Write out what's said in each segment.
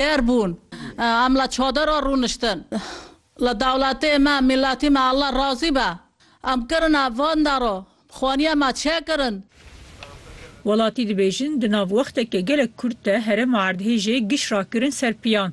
Têr bûn. Em li çadera rûniştin. Li dewletê me, mîletî me Allah razî be. Em kirina van daro. Xwaniya me çê kirin. Welatî dibêjin di nav wexteke gelek kurt de herêma erdhêjê giş rakirin ser piyan.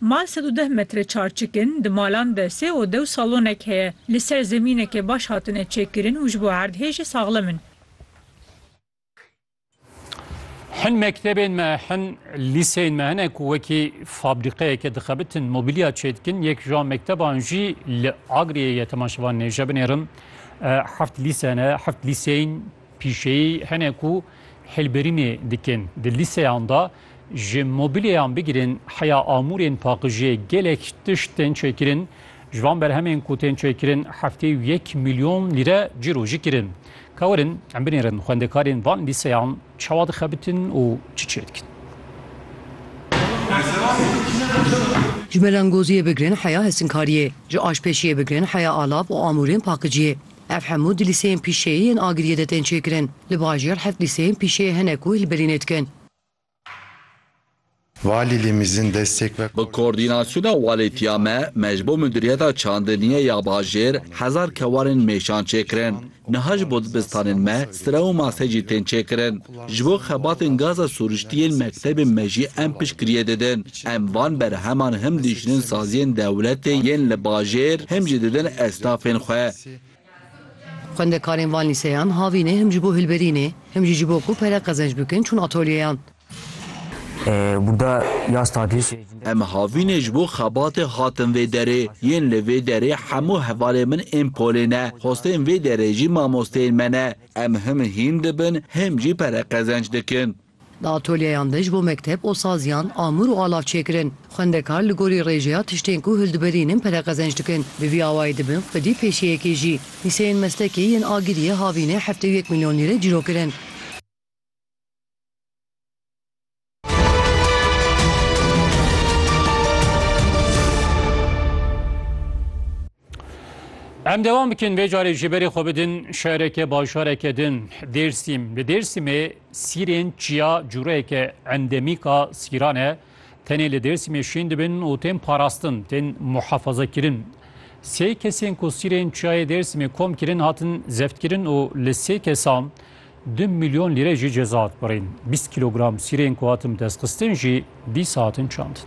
Mal sed û deh metre çarçik in, di malan de sê ode û salonek heye. Li ser zemîneke baş hatine çêkirin û ji bo erdhê jî saxlem in. Hin mektebên me, hin lîseyên me hene ku wekî fabrîqeyeke dixebitin, mobîlya çêdikin. Yek ji wan mekteban jî li Agiriyê ye tema şevan nêje binêrin. Heft lîse hene, heft lîseyên pîşeyî hene ku hilberînê dikin. Di lîseyan de Ji mobîlyeyan bigirên heya amûrên paqijiyê gelek tişt tên çêkirin. Ji van berhemên ku tên çêkirin heftê û yek milyon lîre cîrojî kirin. Kawerin em binêrin xwendekarên van lîseyan çawa dixebitin û çi çêdikin. Ji melangoziyê bigrin heya hesinkariyê, ji aşpêşiyê bigrin heya alav û amûrên paqijiyê. Ev hemû di lîseyên pîşeyî yên Agiriyê de tên çêkirin. Li bajêr heft lîseyên pîşeyê hene ku hilberînê dikin. Valilîmizin destêk ve. Bi koordînasyona walîtiya me, me ji bo Mudiriyeta Çandiniyê ya Bajêr hezar kewanên mêşan çêkirin. Niha ji bo dibistanên me stre û mase jî tên çêkirin. Ji bo xebatên gaza sûriştî yên mektebên me jî em piştgiriyê didin. Em van berheman him dijînin saziyên dewletê yên li bajêr him jî didin estafên xwe. Xwendekarên van lîseyan havînê him ji bo hilberînê him jî ji bo ku pere qezenc bikin çûn atolyeyan. Em havînê ji bo xebatê hatin vê derê. Yên li vê derê hemû hevalên min ên polê ne. Xwestên vê derê jî mamosteyên me ne. Em him hîn dibin him jî pere qezenc dikin. Di atolyeyan de ji bo mekteb û saziyan amûr û alav çêkirin. Xwendekar li gorî rêjeya tiştên ku hildibirînin pere qezenc dikin. Bi vî awayî dibin xwedî pêşeyekê jî. Lîseyên Mestekê yên Agiriyê havînê heftê û yek milyon lîre cîro kirin. Em devam bikin vê carê ji berê xwe bidin şereke bajareke din Dêrsîm. Li Dêrsîmê sîrên çiya cûreyeke endemîka sîran e. Tenê li Dêrsîmê şîn dibin û tên parastin, tên muhefazekirin. Sê kesên ku sîrên çiyayê Dêrsîmê kom kirin hatin zeftkirin û li sê kesan Du milyon lîre jî ceza hat birîn. Bîst kîlogram sîrên ku hatin destxistin jî dîsa hatin çandin.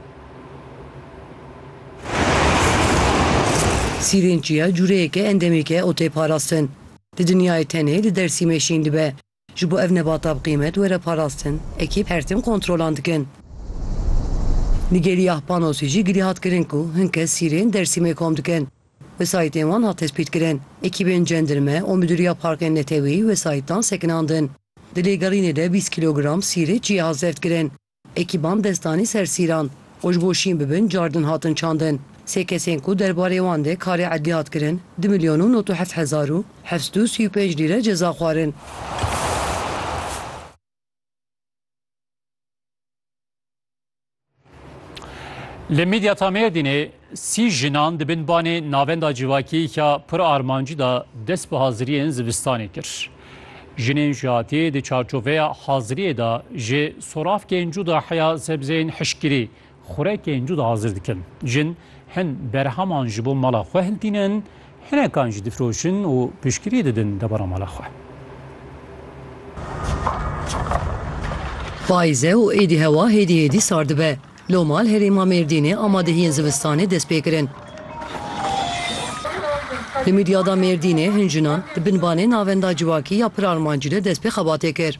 Sîrên çiya cûreyeke endemîk e û tê parastin. Di dinyayê tenê li Dersîmê şîn dibe. Ji bo ev nebata bi qîmet were parastin, ekîp her tim kontrolan dikin. Li Gelîyah Panosî jî girî hat kirin ku hin kes sîrên Dersîmê kom dikin. Wesayîtên wan hat tespîtkirin. Ekîbên cendirme û Midûriya Parkên Neteweyî wesayîtan sekinandin. Di lêgerînê de bîst kîlogram sîrê cihê hat zevtkirin. Ekîban dest danî ser sîran û ji bo şîn bibin cardin hatin çandin. Sê kesên ku derbarê wan de karê edlî hat kirin du milyon û nod û heft hezar û heft sed û sî û pênc lîre ceza xwarin. Li Midyata Mêrdînê sî jinan di bin banê navenda civakiyêka pir armancî de dest bi haziriyên zivistanê kir. Jinên jihatiyê di çarçoveya haziriyê de ji soravkên cuda heya sebzeyên hişkirî, xurekên cuda hazir dikin. Jin hin berheman ji bo mala xwe hiltînin, Hinekan jî difiroşin û piştgiriyê didin debara mala xwe. Payîz e û êdî hewa hêdî hêdî sar dibe. Lo mal herêma Mêrdînê amadehiyên zivistanê dest pê kirin. Li Midyada Mêrdînê hin jinan di binbanê navenda Civakî ya Pir Armancî de dest pê xebatê kir.